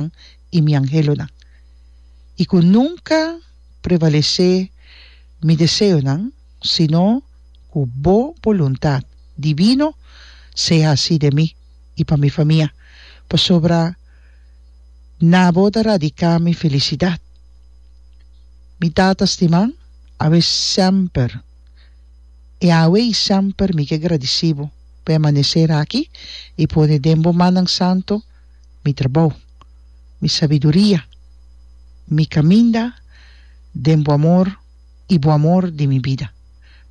angelnan i mi angelonan, i ku nunka prevalesé mi deseonan, sino ku Bo boluntat divino se hasi den mi i pa mi famia, pasobra na Bo ta radiká mi felisidat. Mi Tata stiman, awe semper i awe i semper mi ke gradisí Bo pa e amaneser aki i pone den Bo mannan santu, mi trabou, mi sabiduria, mi caminda den bo amor y bo amor di mi bida.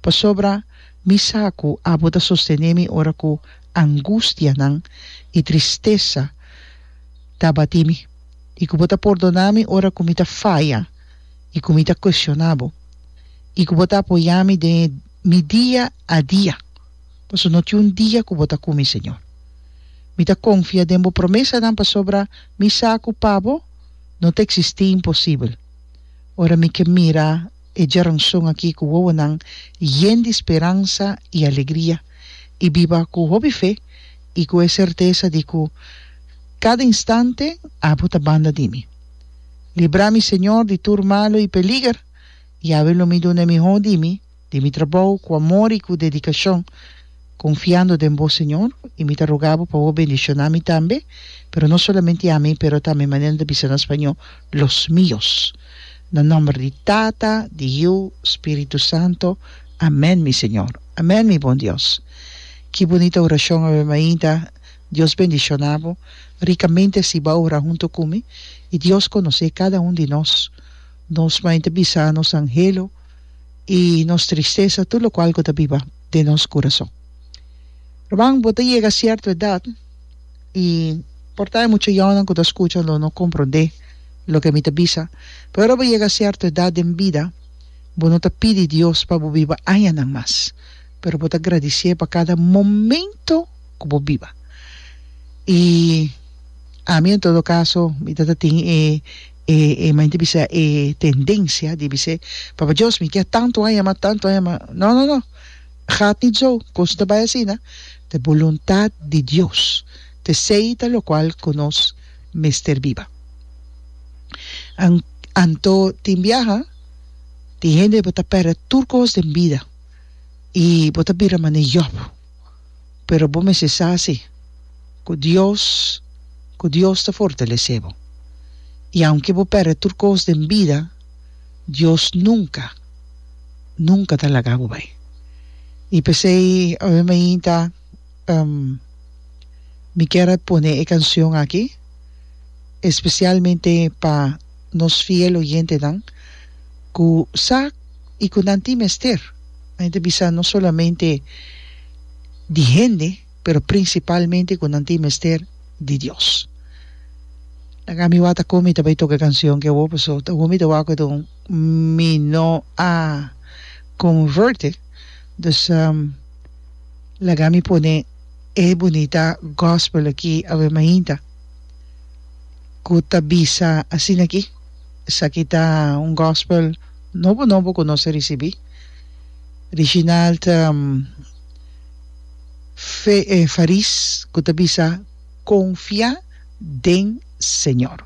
Pasobra mi sa cu abo ta sostene mi ora cu angustianan y tristesa ta bati mi, y cu bo ta pordona mi ora cu mi ta faya y cu mi ta cuestiona bo, y cu bo ta apoya mi den mi dia a dia. pasobra no tin un dia ku bo ta ku mi, Señor. Mi ta konfia den bo promesanan pasobra mi sa ku pa bo no ta eksistí imposibel. Ora mi ke mira e djeronson akí ku wowonan yen di speransa i alegria i biba ku hopi fe i ku e sertesa di ku kada instante abo ta banda di mi. Libra mi, Señor, di tur malu i peliger, Yahweh lo mi duna e mihó di mi, di mi trabou ku amor i ku dedikashon, konfiando den bo, Señor, i mi ta roga bo pa bo bendishoná mi tambe, pero no solamente ami, pero tambe, manera nan ta bisa na spañó, los míos. Na nòmber di Tata, di Yu, Spiritu Santo. Amèn, mi Señor. Amèn, mi bon Dios. Ki bunita orashon awe mainta. Dios bendishoná bo rikamente así bo a ora huntu ku mi. I Dios konosé kada un di nos. Nos mainta bisa nos anhelo. i nos tristesa tur lokual ku ta biba den nos kurason. Rumannan bo ta yega sierto edat i por ta hay mucha yònnan ku ta skucha lo no komprondé loke mi ta bisa pero ora bo yega sierto edat den bida bo no ta pidi Dios pa bo biba añanan mas pero bo ta gradisié pa kada momento ku bo biba i ami en todo kaso mi ta tin e E e main di bisa e tendencia di bis'e Papa Dios mi kia tanto aña mas tanto aña mas no no no gaat niet zo koos ta bai asina te boluntad di Dios te sei ta lokual ku nos mester biba an anto tin biaha tin hende bo ta perde tur koos den bida i bo ta bira manera Job. pero bo mester sa si ku Dios ku Dios ta fortalesé bo. I aunke bo pèrdè tur kos den bida, Dios nunka, nunka ta laga bo bai. I p'esei awe mi a hinta mi kier a pone e kanshon aki espesialmente pa. nos fiel oyentenan ku sa i ku nan tin mester. Nan e ta bisa no solamente di hende, pero prinsipalmente ku nan tin mester di Dios. Nan ami wata kon mi ta bai toka e kanshon ki awo paso ta awor mi ta wak oto mi no a konverte dus laga mi pone e bunita gospel aki awe mainta. ku ta bisa asina aki, Esaki ta un gospel nobo nobo ku nos a risibí. Reginald ta fe faris ku ta bisa konfiá den Señor.